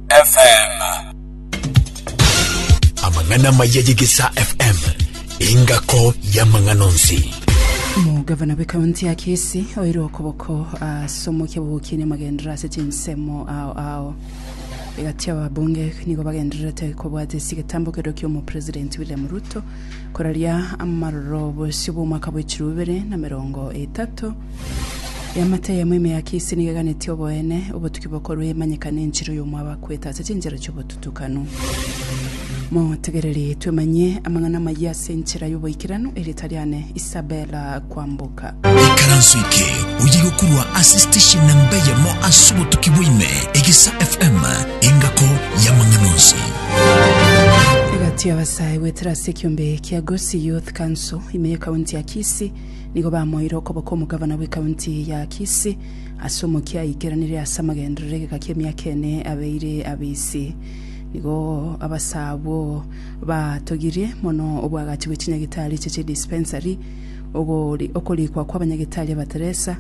FM. amang'ana amaya y'egesa fm engako y'amang'ana onsi Omogavana bw'ekaunti ya Kisii oirwe okoboko ase omokia bw'ogokinia amagenderero ase chinsemo ao ao. Egati ababunge nigo bagendererete kobwata ase egetambo keria kia omopresidenti William Ruto koraria amaroro bosio bw'omwaka bw'echiro bibere na merongo etato Eamate eyemo ime ya Kisi nigo eganetie oboene, obotuki bokorwa emanyeka nenchera oy'omoabakwete ase chinchera chi'obotutukanu. Motegereri twemanyie amang'ana amayia ase enchera y'oboikeranu, erieta riane Isabella Kwamboka. Ikaranso eke oye gokorwa ase station namba eyemo ase obotuki bwa ime, Egesa FM, engako y'amang'ana onsi. Egati y'abasae goetera ase ekiombe kia Gusii Youth Council ime y'ekaunti ya Kisii Nigo bamoeire okoboko omogavana bw'ekaunti ya Kisii ase omokia aikeranire ase amagenderero egeka ki'emiaka ene abeire abisi. Nigo abase abwo batogirie mono obwagachi bwe chinyagitari eche chie dispensary, ogori- okorikwa kw'abanyagitari abateresa,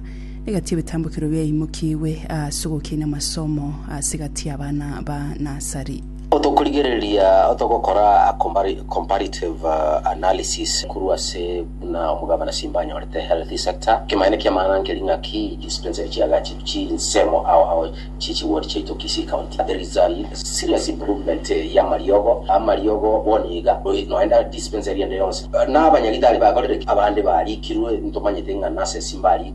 egati y'ebitambokero biaimokigwe ase ogokinia amasomo ase egati y'abana ba nasari. Otokorigereria otogokora a compari- comparative uh, analysis korwa ase buna omogabana Simba anyorete healthy sector. Ekemanyererio ki'amaana nkeri ng'aki dispensary chi'agachi chinsemo ao ao chie chiward chiaito Kisii County. There is a serious improvement eh, y'amariogo. Amariogo bono iga noi- noenda dispensary ende yonsi. Na abanyagitari bakorire ki? Abande barikirwe, ntomanyete ng'a nurses mbari-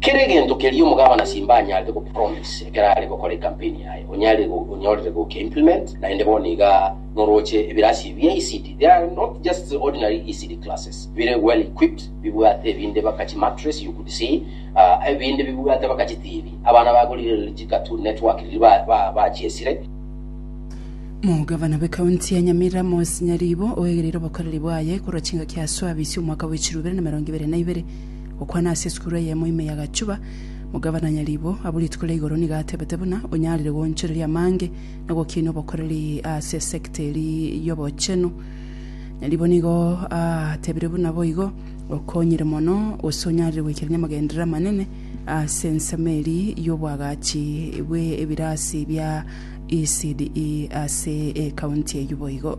Kera egento keria omogabana Simba anyarete go promise ekero are gokora ecampaign yaye onyarire onyorire goki implement naende bono iga noroche ebirasi bia ECD they are not just ordinary ECD classes bire well equipped bibwate ebinde baka chi mattress you could see uh, ebinde bibwate baka chi TV abana bagorire riri chi cartoon network riri ba, ba, bachiesire Omogabana bw'ekaunti ya Nyamirambo Nyaribo oegereire obokoreri bwaye korwa chingaki aswa abisi omwaka bwa echiru ibere na emerongo ibere na ibere. Gokwana ase esukuru eyemo ime ya Gachuba, Mogavana Nyaribo abwo rituko ria igoro nigo atebete buna onyarire goonchoreria amange na gokinia obokoreri ase esekta eri y'obochenu. Nyaribo nigo atebire buna boigo okonyire mono gose onyarire goikera namagenderero amanene ase ensemo eri y'obwagachi bw'ebirasi bia ECDE ase ekaunti eyio boigo.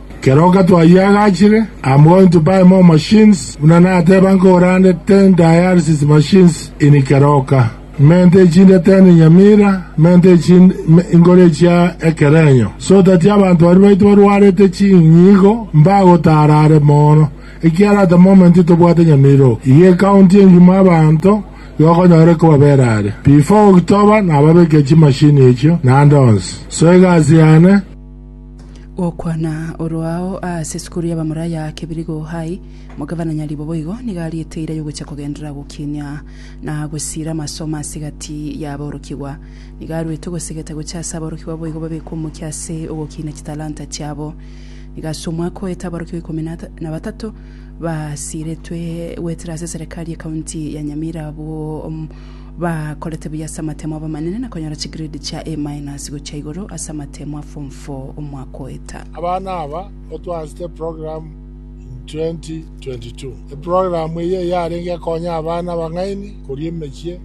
Keroka twayiagachire, I'm going to buy more machines, buna nateba nkogorande ten dialysis machines in Keroka. Mente echinde ten in Nyamira, mente echinde ime inkore echia Ekerenyo, so that abanto baria baito barwarete chinyigo mbagotara are moono, ekiara at the moment tobwate Nyamira oo, iga ecounty engima abanto yokonyore kobabera are. Before October nababekia chimachine echio, naande onsi. So egasi yane. Gokwana oroao ase esukuru y'Abamuraia Kibirigo High, Mugavana Nyaribo boigo nigo ariete eira y'ogocha kogenderera gokinia na gosiira amasomo ase egati y'aborokigwa. Nigo aruete ogosegeta gocha ase aborokigwa boigo babekwe omokia ase ogokinia chitalanta chiabo. Nigo ase omwaka oete aborokigwa ikomi na batato basiiretwe goetera ase Serekari ye County ya Nyamira abwo Bakorete buya ase amatemo abamanene na konyora chigrade chia A minus gochia igoro ase amatemo a form four omwaka oeta. Abana aba otwaasete eprogramu in 2022. Eprogramu eye yarenge ekonya abana abang'aini koria emechie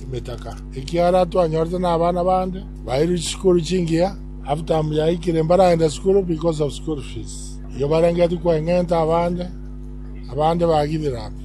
emetaka. Ekiara twanyorete na abana bande bairwe chisukuru chingiya half-term yaikire mbaraenda sukuru because of school fees. Igo barengetie koeng'enta abande, abande bagithira pi.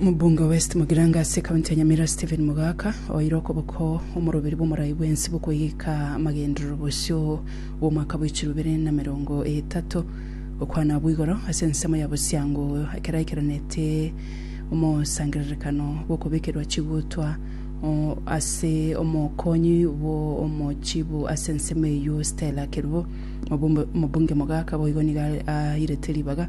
Omobunge o West Mugirango ase ekaunti ya Nyamira Stephen Mogaka oeire okoboko omoroberi bw'omorai bw'ense bw'okoegeka amagenderero bosio bw'omwaka bw'echiro ibere na merongo etato gokwana abwo igoro ase ensemo ya bosiango ekero aikeranete omosangererekano bw'okobekerwa chigutwa ase omokonyi bw'omochibu ase ensemo eyio Stella Kerubo. Omobunge Mogaka boigo nigo airete ribaga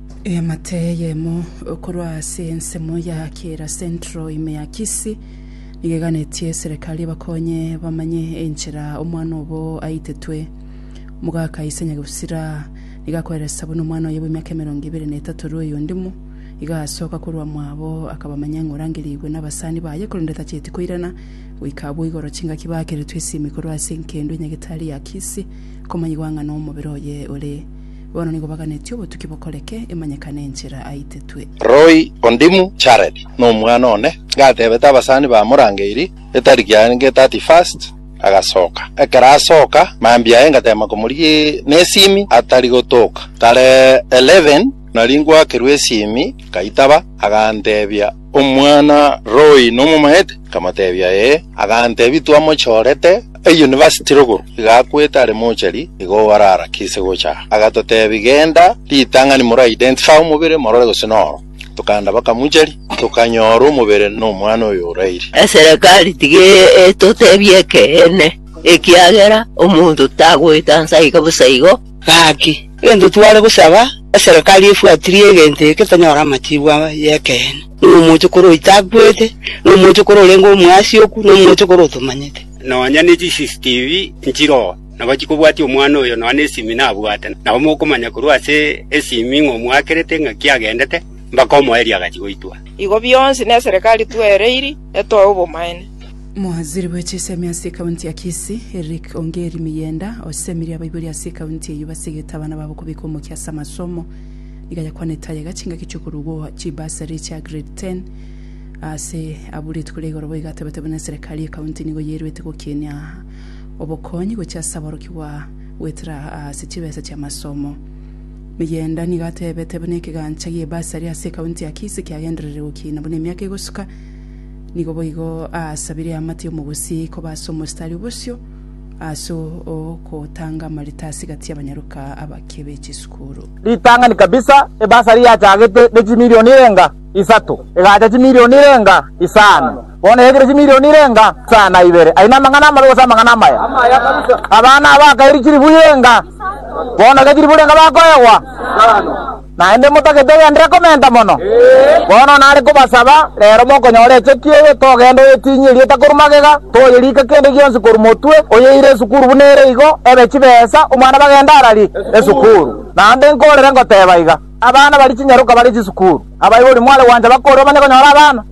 Eamate eyemo korwa ase ensemo ya Kira Central ime ya Kisii nigo eganetie serekari ebakonye bamanye enchera omwana obo aitetwe. Omogaka Isa Nyagusira nigo akoeresa buna omwana oye bw'emiaka emerongo ebere na etato rue Oyondimo iga asoka korwa mwabo akabamanya ng'a orangerigwe nabasani baye korende tacheti koirana goika abwo igoro chingaki baakeretwe esimi korwa ase enkendo enyagetari ya Kisii komanyigwa ng'a nomobere oye ore Bono nigo baganeti obotuki bokoreke, emanyekane enchera aitetwe. Roy Ondimu Jared nomwana one gatebete abasani bamorangeirie etariki yarenge 31st agasoka ekero asoka mambia aye ngatema komorigia nesimi atari gotoka tarehe 11 nari ngwakerwa esimi ngaitaba agantebia Omwana-roi nomomaete? Nkamotebia, Ee. Agantebia, Twamochorete eyunivasiti rogoro, iga akwete are mochari, igo orarakise gocha aa. Agatotebia, Genda ritang'ani more identify omobere, morore gose noro. Tokaenda bakamochari, tokanyora omobere nomwana oyo oraire. Eserekari tiga etotebie ekeene, ekiagera omonto tagoeta nsa iga bosa igo. Gaki, egento tware gosaba, eserekari efuatirie egento eke tonyore amatiku y'ekeene, ng'a omochokoro oito akwete, na omochokoro orenge omoasioku, na omochokoro otomanyete. Nonya ne chiCCTV nchiroo, nabo chikobwatia omwana oyo nonya nesimi nabwate. Nabo mokomanya korwa ase esimi ng'a omwakerete ng'aki agendete, mbaka omoerio agachi goitwa. Igo bionsi neserekari twereirie etoe obomaene. Mowaziri bwe chisemi ase ekaunti ya Kisii, Eric Ongeri Miyenda, osemirie abaibori ase ekaunti eyio basegete abana babo kobeka omokia ase amasomo. Nigo ayakwanete ayega chingaki chiokorugwa chibasari chia grade ten ase abwo rituko ria igoro boigo atebete buna eserekari y'ekaunti nigo yairwete gokinia obokonyi gochia ase aborokigwa goetera ase chibesa chi'amasomo. Miyenda nigo atebete buna ekegancha gi'ebasari ase ekaunti ya Kisii kiagendererire gokina buna emiaka egosuka Nigo boigo aasabire aamate omogusii koba ase omositari o bosio ase ogotanga amarita ase egati y'abanyaroka abake be chisukuru. Ritang'ani kabisa, ebasari yachagete ne chimilioni erenga isato, egacha chimilioni erenga isano, bono yaikire chimilioni erenga isano na ibere. Aye namang'ana amabe gose amang'ana amaya? Abana aba akairi chilifu irenga, bono iga chilifu irenga bakoegwa. naende motagete ogenderere komenta mono. Bono nare kobasaba, reero mokonyora echeki eye, togende oyetinye erieta korwa magega, toyerike kende gionsi korwa motwe, oyeire esukuru buna ere igo ebe chibesa omwana bagende ararie esukuru. Naende nkorere ngoteeba iga, Abana baria chinyaroka bare chisukuru, abaibori mware gwancha bakore omanye konyora abana.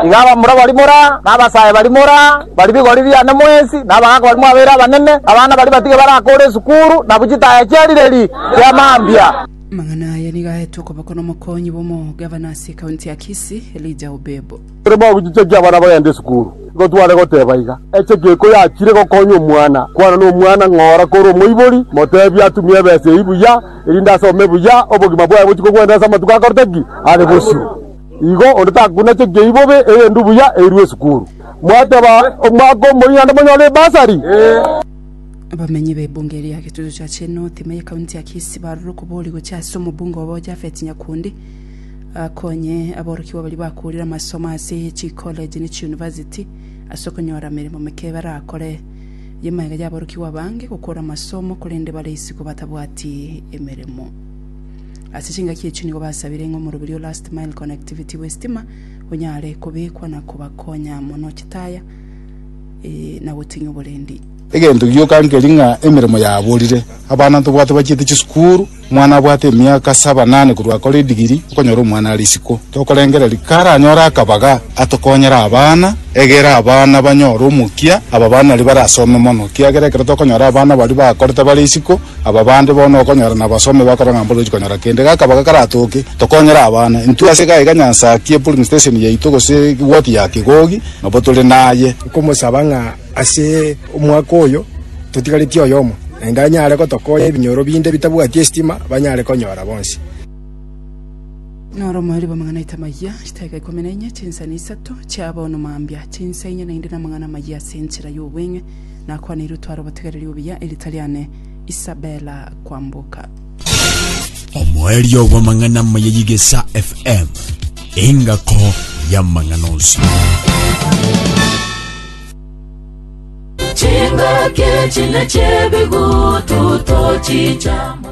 Iga abamura bari mora, na abasae bari mora, bari bigori biane mwensi, na abagaaka bari mwabeire abanene, abana bari batige barakoore esukuru, nabu chitaya chi'erireri chia mambia. Amang'ana aya nigo aetwe okoboko n'omokonyi bw'omogavana ase ekaunti ya Kisii, Elijah Obebo. Ekero bagochichekia abana bagenda esukuru, nigo tware goteba iga, Eche geko yachire gokonya omwana, kwana nomwana ng'ora kore omoibori, motebie atumie ebesa eyio buya, erinde asome buya, obogima bwaye bochie kogwenerera ase amatuko akorete ki? Are bosio. Igo onde takunachia kei bobe eyende buya eirwe esukuru. Mwateba omwaka omoyio naende monyore ebasari. Abamenyi b'ebunge ria Getutu cha Chenooth ime ye county ya Kisii barure okobori gochia ase omobunge obo Japhet Nyakundi akonye aborokigwa baria bakoorire amasomo ase chi college ne chi university ase okonyora emeremo meke barakore ye magega y'aborokigwa abange gokora amasomo korende bare isiko batabwati emeremo. Ase chingaki echio nigo basabire ng'a omoroberio o Last Mile Connectivity bw'estima onyare kobekwa na kobakonya mono chitaya na goting'ia oborendi. Egento gioka nkeri ng'a emeremo yaborire, abana ntobwate bachiete chisukuru, omwana abwate emiaka saba nane korwa akore edigiri, okonyora omwana are isiko. Tokorengereria karanyore akabaga atokonyere abana, egere abana banyore omokia, ababana nario barasome mono, kiagera ekero tokonyora abana baria bakorete bare isiko, Aba bande bono okonyora nabasome bakora ng'a mbore ochi konyora kende. Gakaba gakaratoke, tokonyere abana. Intwe ase iga iga Nyansa akie pulling station yaito gose egwoti ya Kigogi nabo tore naye. Nkomosaba ng'a ase omwaka oyo totigaretie oyomo naende anyare gotokonya ebinyoro binde bitabwati esitima banyare konyora bonsi. Noro omoribo amang'ana aito amayia, chitaika ikomi na inye, chinsani isato chiabono mambia, chinsa inye naende namang'ana amayia ase enchera y'obweng'e. Nakwaneiru tware obotigareri obuya erita riane Isabella Kwamboka. Omoerio bw'amang'ana amaya y'Igesa FM, engako y'amang'ana onsi. Chingaki chine chebigutu tochichama.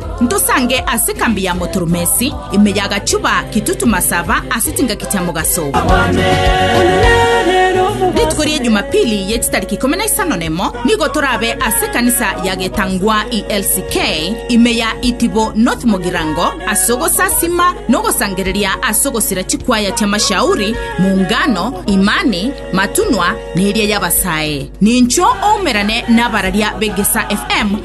Ntosange ase ekambi ya Motoromesi, ime ya gachuba kitutu masaba ase chingaki chia mogaso. Rituko ria Ejumapili ye chitariki ikomi na isano na emo nigo torabe ase ekanisa ya getangwa ELCK ime ya Itibo North Mogirango ase ogosasima na ogosangereria ase ogosira chikwaya chia Mashauri, Muungano, Imani, Matunwa na eria y'Abasae. Nincho oumerane nabararia b'Egesa FM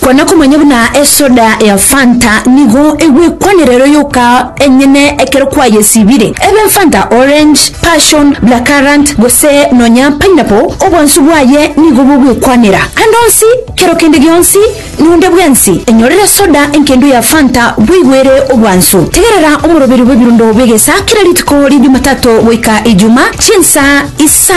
Kwana komanya buna esoda ya fanta nigo egwekwanera ero yoka enyene ekero kwayesibire ebe fanta orange, passion, black currant gose nonya pineapple obonsu bwaye nigo bogwekwanera ande onsi kero kende gionsi nonde bwensi enyorere soda enkendo ya fanta bweigwere obwansu tegerera omoroberi bw'ebirundo bw'egesa kera rituko ri jumatato goika ijuma chinsa isano